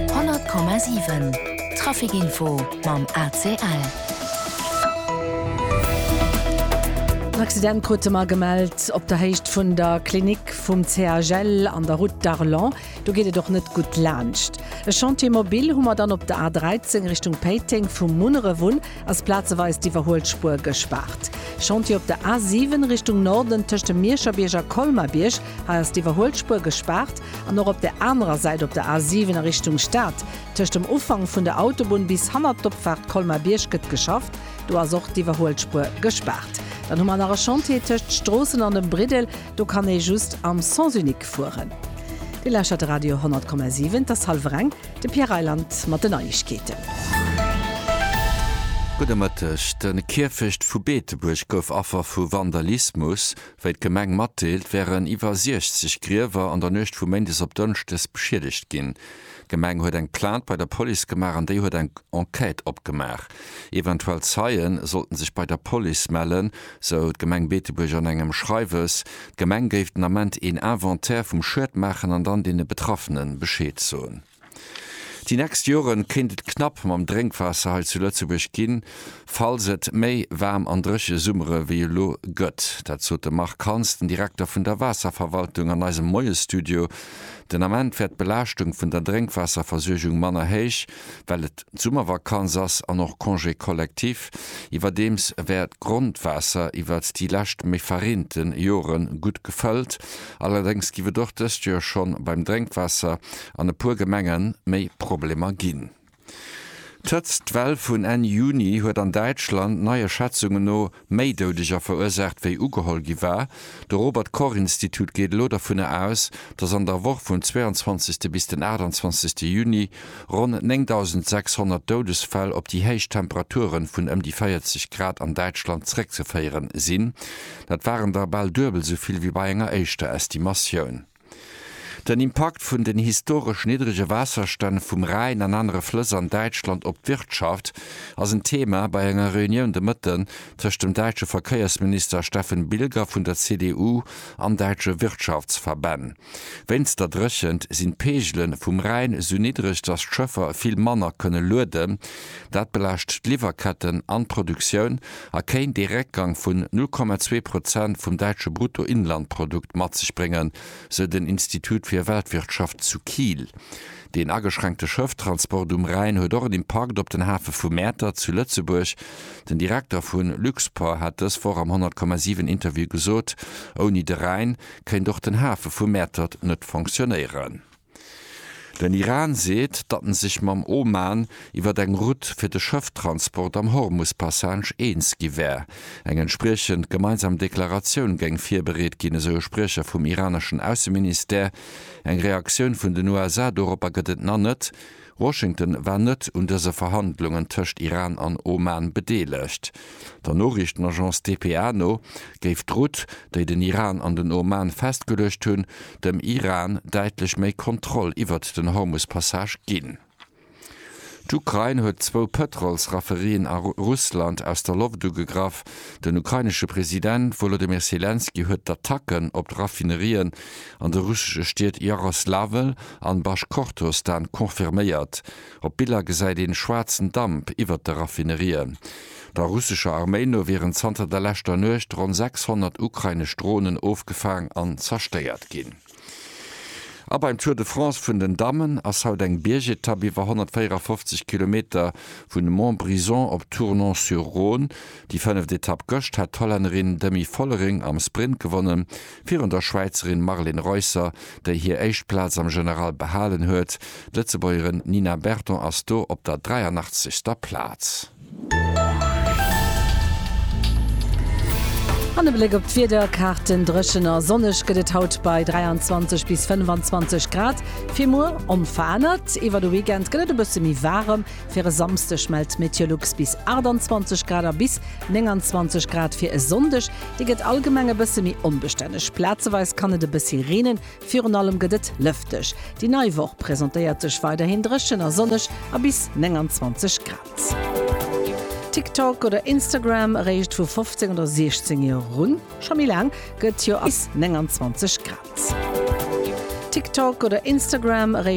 100,7 Trafic Info mam ACL. En Accident krute mer gemellt op der Héicht vun der Klinik vum CHL an der Route d'Arlon. Do geet et och net gutt laanscht. E Chantier mobile hu mer dann op der A13 Richtung Péiteng. Vum Munneref un ass plazeweis d'Iwwerhuelspuer gespaart. Chantier op der A7 Richtung Norden tëscht dem Mierscherbierg a Colmer-Bierg. Hei ass d'Iwwerhuelspuer gespaart an och op der anerer Säit op der A7 a Richtung Stad, tëscht dem Ufank vun der Autobunn bis hannert d'Opfaart Colmar-Bierg gëtt geschafft. Do ass och d'Iwwerhuelspuer gespaart. Dann hu mer nach e Chantier tëscht Stroossen an dem Briddel, do kann ee just am Sens unique fueren. Dir lauschtert de Radio 10,7, et ass hallwer eng, de Pierre Reyland mat den Neiegkeeten. Gudde Mëtteg, De Kierfecht vu Beetebuerg gouf Affer vu Vandalismus. Wéi d'Gemeng matdeelt, wären iwwer 60 Griewer an der Nuecht vu Méindes op Dënschdes beschiedegt ginn. D'Gemeng huet eng Plainte bei der Police gemaach an déi huet eng Enquête opgemaach. Eventuell Zeie sollten sech bei der Police mellen, sou d'Gemeng Beetebuerg an engem Schreiwes. D'Gemeng géif den Ament een Inventaire vum Schued maachen an dann deene Betraffene Bescheed soen. Déi nächst Joren kéint et knapp mam Drénkwaasser hei zu Lëtzebuerg ginn, falls et méi waarm an dréche Summere wéi elo gëtt. Dat sot de Marc Hans, den Direkter vun der Waasserverwaltung an eisem Moiesstudio. Den Ament wär d'Belaaschtung vun der Drénkwaasserversuergung manner héich, well et d'Summervakanz ass an och Congé collectif. Iwwerdeems wär d'Grondwaasser iwwert déi lescht méi verreente Jore gutt gefëllt, Allerdéngs giff et och dëst Joer schonn beim Drénkwaasser an e puer Gemengen méi Problemer ginn. D'Hëtztwell vun Enn Juni huet an Däitschland neie Schätzungen no méi Doudeger verursaacht wéi ugeholl gi war. De Robert Koch Institut geet elo dovunner aus, dass an der Woch vum 22. bis den 28. Juni ronn 9.600 Doudesfäll op déi héich Temperature vun ëm déi 40 Grad an Däitschland zréckzeféieren sinn. Dat waren der bal duebel esou vill wéi bei enger éischter Estimatioun. Den Impakt vun den historesch niddrege Waasserstänn vum Rhäin an anere Flëss an Däitschland op d'Wirtschaft ass en Thema bei enger Reunioun de Mëtten tëscht dem däitsche Verkéiersminister Steffen Bilger vun der CDU an däitsche Wirtschaftsverbänn. Wéinst der Dréchent sinn d'Peegele vum Rhäin sou niddreg, datt d'Schëffer vill manner kënne lueden. Dat belaascht d'Liwwerketten an d'Produktioun a kéint ee Réckgang vun 0,2 Prozent vum däitsche Bruttoinlandprodukt mat sech bréngen, sou den Institut fir Weltwirtschaft zu Kiel. Deen ageschränkte Schëfftransport um Rhäin huet och en Impakt op den Hafe vu Mäertert zu Lëtzebuerg. Den Direkter vu Luxport hat dës Woch am 100,7 Interview gesot, Ouni de Rhäin kéint och den Hafe vu Mäertert net fonctionéieren. Den Iran seet, datt en sech mam Oman iwwer eng Route fir de Schëfftransport am Hormus-Passage eens gi wär. Eng entspriechend gemeinsam Deklaratioun géing virbereet ginn, esou e Spriecher vum iraneschen Ausseministère. Eng Reaktioun vun den USA doropper gëtt et na net. Washington war net un dëse Verhandlungen tëscht Iran an Oman bedeelegt. Der Noriichtenagence dpa no géif d'Route, déi den Iran an den Oman festgeluecht hunn, dem Iran däitlech méi Kontroll iwwert den Hormus-Passage ginn. D'Ukrain huet zwou Pëtrolsrafferien a Russland aus der Loft ugegraff. Den ukrainesche President Wolodymyr Selenskyj huet d'Attacken op d'Raffinerien An de russesche Stied Jaroslawel an Baschkortostan confirméiert. Op Biller gesäit een schwaarzen Damp iwwert de Raffinerien. Der russescher Arméi no wieren zanter der leschter Nuecht ronn 600 ukrainesch Dronen ofgefaang an zerstéiert ginn. A beim Tour de France vun den Dammen ass haut eng Biergetapp iwwer 154 Kilometer vun Montbrison op Tournon-sur-Rhône. Déi fënneft Etapp gëscht hat d'Hollännerin Demi Vollering am Sprint gewonnen. Virun der Schwäizerin Marlen Reusser, déi hir éischt Plaz am General behalen huet. D'Lëtzebuergerin Nina Berton ass do op der 83. Plaz. An e Bléck op d'Wiederkaarten, Dréchen a sonneg gëtt et haut bei 23 bis 25 Grad. Fir muer onverännert. Iwwer de Weekend gëtt et e bësse méi waarem. Fir e Samsdeg mellt Meteolux bis 28 Grad a bis 29 Grad fir e Sonndeg. Déi gëtt allgemeng e bësse méi onbestänneg. Plazeweis kann et e bëssi reenen, virun allem gëtt et lëfteg. Déi nei Woch presentéiert sech weiderhin dréchen a sonneg a bis 29 Grad. TikTok oder Instagram, eréischt vu 15 oder 16 Joer erun? Scho méi laang gëtt jo. Bis 29 Grad. TikTok oder Instagram, eréischt.